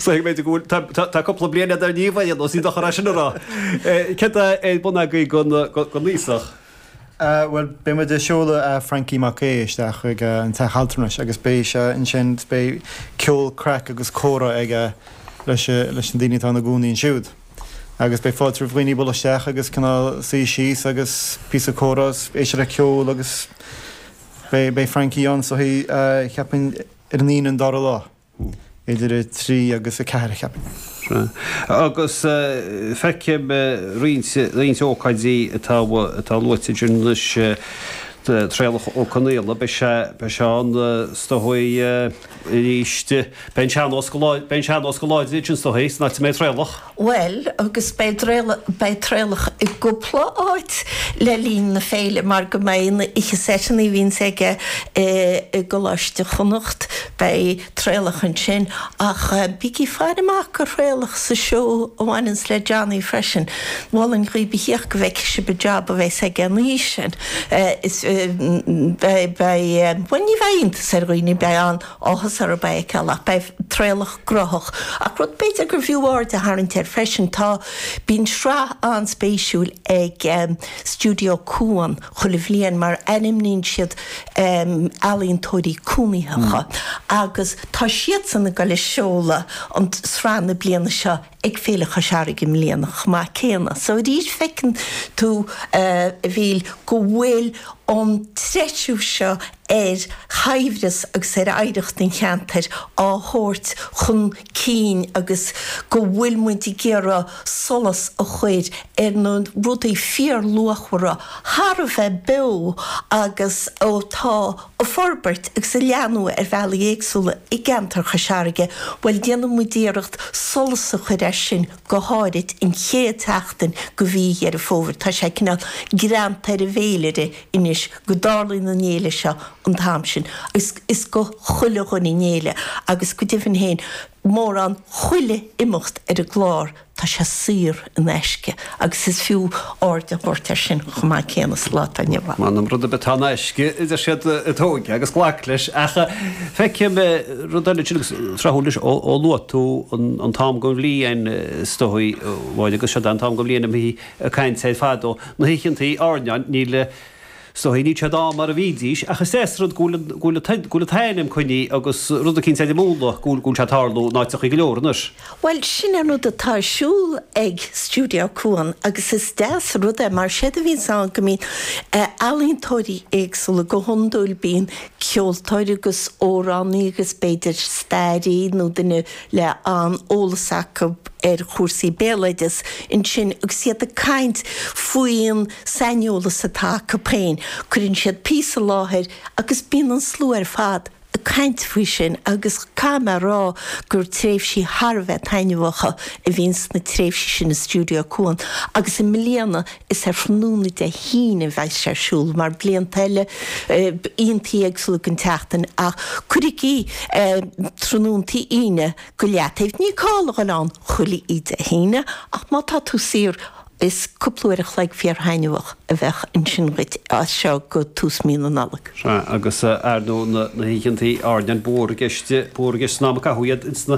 Samhlaím go bhfuil, tá, tá, tá cúpla bliain eadar Niamh a dhéanamh, ní dochar é sin a rá. Céard é an bun agaibh gon, gon aosach? Bhuel, beidh muid a' seoladh Frankie Mac Aodh isteach chuig a, an teach altranais agus beidh sé ansin 's beidh ceol, craic agus comhrá aige leis, leis na daoine atá ina gcónaí ansiúd. Agus beidh fáilte roimh dhaoine a dhul isteach agus cineál suí síos agus píosa comhrá 's éisteacht le ceol agus beidh, beidh Frankie ann so he, cheapainn, Ar an Aoine an dara lá. Idir a trí agus a ceathair. Agus feicim roinnt ócáidí atá luaite ansin anois, Traolach Ó Conghaile, beidh sé ann is dóigh arís. Beidh an sean-nós go láidir ansin is dóigh, san áit a mbeidh Traolach. Bhuel, agus beidh Traolach i gcúpla áit le linn na féile mar go mbeidh na oíche seisean a bhíonns aige i gColáiste Chonnacht, beidh Traolach ansin, ach bígí faire amach go Thraolach sa seó a bhaineanns le Johnny freisin. Mholfainn dhaoibh a thíocht go bhfeicfidh sibh an job a bheas aige an oíche sin. Is beidh, bhuel ní bheidh iontas ar dhaoine, beidh an. Áthas orthu é a fheiceáil, ach beidh Traolach gnothach. Ach rud b'fhéidir gur bhfiú aird a tharraingt air freisin, tá, bíonn sraith an-spéisiúil ag Stiúideo Cuan chuile bhliain mar ainmníonn siad ealaíontóirí cónaitheacha agus tá siadsan ag dul le seoladh an sraith na bliana seo ag Féile Chois Fharraige i mbliana chomh maith céanna. So arís feiceann tú, a Mhíl, go bhfuil an treisiú seo ar shaibhreas agus ar oidhreacht an cheantair á thabhairt chun cinn agus go bhfuil muid ag iarraidh solas a chur ar na rudaí fíorluachmhara atá againn beo agus atá a forbairt agus a leathnú ar bhealaí éagsúla i gceantar Chois Fharraige, bhuel déanann muid iarracht solas a chur air sin go háirid an chéad tseachtain de mhí Dheireadh Fómhair, tá sé cineál greanta ar an bhféilire anois go dtarlaíonn an fhéile seo an t-am sin agus is go chuile dhuine an fhéile agus go deimhin féin mórán chuile imeacht ar an gclár tá sé saor in aisce agus is fiú aird a thabhairt air sin chomh maith céanna sa lá atá inniu ann. M'anam rud ar bith atá in aisce a deir siad tóig agus glac leis ach feicim rud eile ansin agus tráthúil anois ó luaigh tú an t-am den bhliain is dóigh, bhuel agus seo an t-am den bhliain a mbíonn ag caint air fadó na hoícheantaí airneáin, níl is dóigh, níl siad ann mar a bhídís, ach is deas rud go bhfuil an, go bhfuil an, go bhfuil an t-ainm coinnithe agus rud eicínt eile múnla, go bhfuil, go bhfuil sé ag tarlú in áiteachaí go leor anois. Bhuel, sin an rud atá ar siúl ag Stiúideo Cuan agus is deas an rud é, mar séard a bhíonns ann go mbíonn ealaíontóirí éagsúla, go hiondúil bíonn ceoltóir agus óránaí agus b'fhéidir stairí nó duine, le an-eolas acu ar chúrsaí béaloideas ansin agus iad ag caint faoin saineolas atá acu féin. Cuireann siad píosa i láthair agus bíonn an slua ar fad ag caint faoi sin agus caithfidh mé a rá gur tréimhsí thar a bheith taitneamhacha a bhíonn sna tréimhsí sin i Stiúideo Cuan agus i mbliana, Is ar thráthnóna Dé hAoine a bheidh sé ar siúl, mar blianta eile laethantaí éagsúla den tseachtain, ach cuirigí tráthnóntaí Aoine go leataobh, níl call a dhul ann chuile oíche Dé hAoine, ach má tá tú saor, is cúpla uair a chloig fíor-thaitneamhach a bheidh ansin dhuit as seo go tús mí na Nollag. Sea, agus ar ndóigh na hoícheantaí airneáin, ba mhór i gceist san am a caitheadh iad ins na.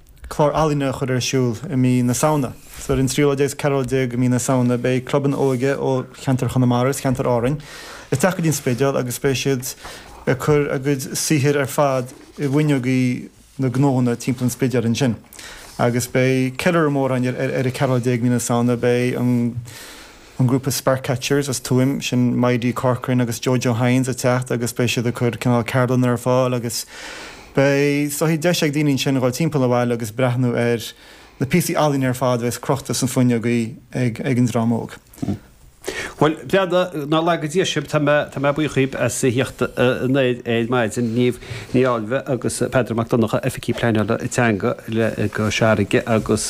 clár ealaíne a chur ar siúl i mí na Samhna. Ar an 13 agus 14 ú mí na Samhna beidh clubanna óige ó cheantar Chonamara is cheantar Árainn ag teacht go dtí an Spidéal agus beidh siad ag cur a gcuid saothair ar fad i bhfuinneogaí na ngnóthaí timpeall an Spidéil ansin agus beidh ceiliúradh mór ann ar an 14 ú mí na Samhna beidh an an grúpa Sparkcatchers as Tuaim, sin Maidhc Corcoran agus Jojo Hynes, ag teacht agus beidh siad ag cur cineál ceardlanna ar fáil agus beidh siad, deis ag daoine ansin dhul timpeall an bhaile agus breathnú ar na píosaí ealaíne ar fad a bheas crochta sna fuinneogaí ag an dream óg. Bhuel, bhuel nár laga Dia sibh, tá mé buíoch díbh as a theacht anoir ar maidin, Niamh Ní Fháilbhe agus Peadar Mac Donnacha, Oifigigh Pleanála Teanga le Cois Fharraige agus